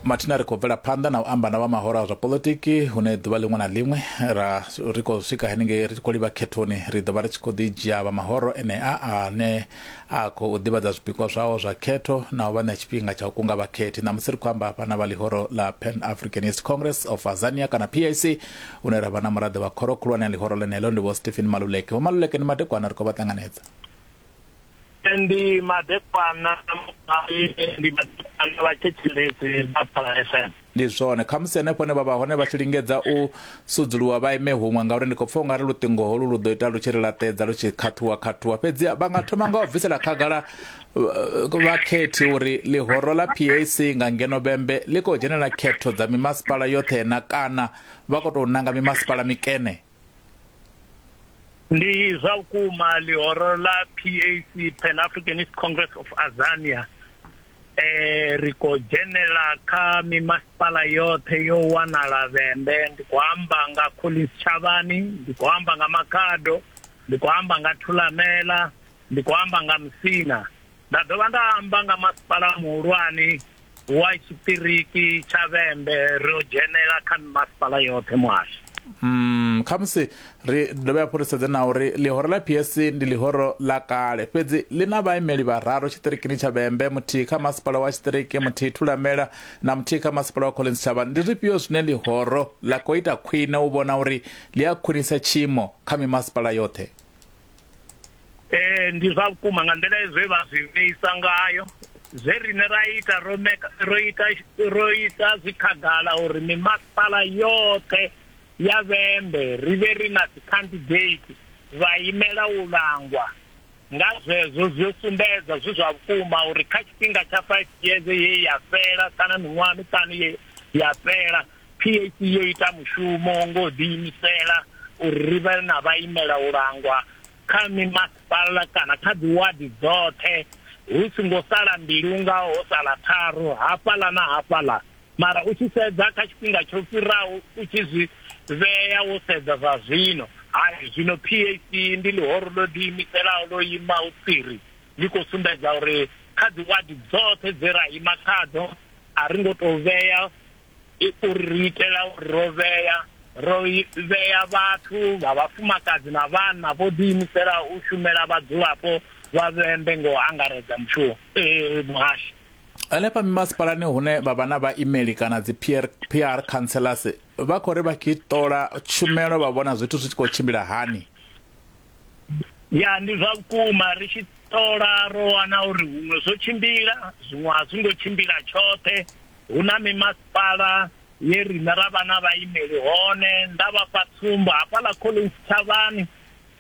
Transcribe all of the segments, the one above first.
mathina ri khou bvela phanḓa na u amba na vha mahoro a zwa politiki hune ḓuvha ḽiṅwe na ḽiṅwe ra ri khou swika henengei ri tshi khou livha khethoni ri ḓo vha ri tshi khou ḓi dzhia vha mahoro enea ane a khou ḓivhadza zwipikwa zwawo zwa khetho na u vha ṋea tshifhinga tsha u kunga vhakhethi ṋamusi ri khou amba hafha na vha ḽihoro ḽa pan africanist congress of azania kana pac hune ra vha na muraḓo wa khoro khulwane ya ḽihoro ḽeneḽo ndi vho stephen maluleke vho maluleke ndi madekwana ri khou vha ṱanganedza ndi madekwana ndi madekwana vha thetshelesi vha phala fm ndi zwone khamusi henefho hone vha vha hone vha tshi lingedza u sudzuluwa vha ime huṅwe ngauri ndi khou pfa u nga ri luṱingo holu lu ḓo ita lu tshi ri laṱedza lu tshi khathuwa khathuwa fhedzi vha nga thoma nga u bvisela khagala uh, vhakhethi uri ḽihoro ḽa pac nga ngeno bembe ḽi khou dzhenela khetho dza mimasipala yoṱhe na kana vha khou tou nanga mimasipala mikene ndi zwa vhukuma ḽihoro ḽa PAC Pan Africanist Congress of Azania eh ri ko dzhenela kha mimasipala yoṱhe yo wanala vhembe ndi khou amba nga Collins Chavani ndi khou amba nga Makhado ndi khou amba nga Thulamela ndi khou amba nga Musina Nda dovha nda amba nga masipala muhulwane wa tshiṱiriki tsha Vhembe, ri ḓo dzhenela kha mimasipala yoṱhe muhasho. Umm, khamusi ri dovhe hafhu ri sedze na uri ḽihoro ḽa PSC ndi ḽihoro ḽa kale, fhedzi ḽi na vhaimeli vhararu tshiṱirikini tsha Vhembe, muthihi kha masipala wa tshiṱiriki, muthihi Thulamela na muthihi kha masipala wa Collins Thabani. Ndi zwifhio zwine ḽihoro ḽa khou ita khwine u vhona uri ḽi a khwinisa tshiimo kha mimasipala yoṱhe? ee ndi zwa vhukuma nga nḓila ezwe vha zwi vheisa ngayo zwe rine ra ita ro meka ro ita ro isa zwi khagala uri mimasipala yoṱhe ya vhembe ri vhe ri na dzi candidate vha imela u langwa nga zwezwo zwi sumbedza zwi zwa vhukuma uri kha tshifhinga tsha 5 years ye ya fela kana miṅwaha miṱanu ye ya fela PAC yo ita mushumo ngo ḓi imisela uri ri vhe na vha imela u langwa kha mimasipala kana kha dzi wadi dzoṱhe hu singo sala mbili unga ho sala tharu hafhala na hafhala mara u tshi sedza kha tshifhinga tsho fhiraho u tshi zwi vhea wo sedza zwa zwino hai zwino PAC ndi ḽihoro ḽo ḓi imiselaho ḽo ima u tsiri ḽi khou sumbedza uri kha dzi wadi dzoṱhe dze ra ima khadzo a ri ngo tou vhea uri ri itela uri ro vhea ro vhea vhathu vha vhafumakadzi na vhanna vho ḓiimisela u shumela vhadzulapo vha Vhembe nga u angaredza mushumo eh, muhashi. Hanefha mimasipalani hune vha vha na vhaimeli kana dzi PR, PR councillors vha khou ri vha tshi ṱola tshumelo vha vhona zwithu zwi tshi khou tshimbila hani ya ndi zwa vhukuma ri tshi ṱola ro wana uri huṅwe zwo tshimbila zwiṅwe a zwi ngo tshimbila tshoṱhe Hu na mimasipala ye riṋe ra vha na vhaimeli hone. Nda vha fha tsumbo, hafhaḽa Collins Thavhani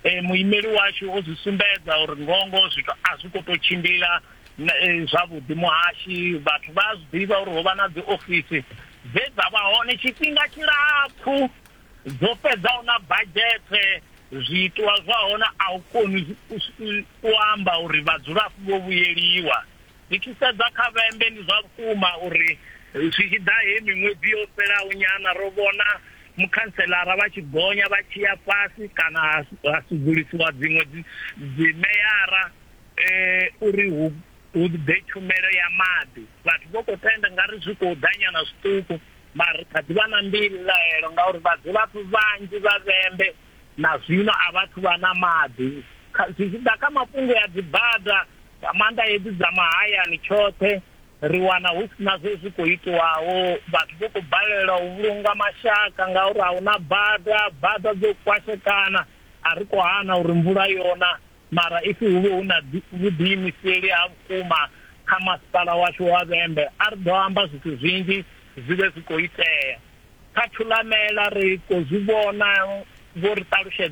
eh, muimeli washu o zwi sumbedza uri ngongo zwithu a zwi khou tou tshimbila eh, zwavhuḓi muhashi. Vhathu vha a zwi ḓivha uri ho vha na dzi ofisi dze dza vha hone tshifhinga tshilapfu dzo fhedzaho na badzhethe zwiitwa zwa hone a u koni u amba uri vhadzulapo vho vhuyeliwa Ri tshi sedza kha vhembe ndi zwa vhukuma uri zwi tshi ḓa heyi miṅwedzi yo fhelaho nyana ro vhona mukhantselara vha tshi gonya vha tshi ya fhasi kana ha sudzulusiwa dziṅwe dzimeyara uri hu hu ḓe tshumelo ya maḓi. Vhathu vho khou tenda nga ri zwi khou ḓa nyana zwiṱuku mara ri kha ḓi vha na mbilaelo ngauri vhadzulapo vhanzhi vha vhembe na zwino a vhathu vha na maḓi kha zwi tshi ḓa kha mafhungo ya dzibada nga maanḓa hedzi dza mahayani tshoṱhe ri wana hu si na zwe zwi khou itiwaho vhathu vho khou balelwa u vhulunga mashaka ngauri a hu na bada bada dzo kwashekana a ri khou hana uri mvula yona mara ifi hu vhe hu na vhuḓiimiseli ha vhukuma kha masipala washu wa vhembe a ri ḓo amba zwithu zwinzhi zwi vhe zwi khou itea Kha Thulamela ri khou zwi vhona, vho ri ṱalutshedza.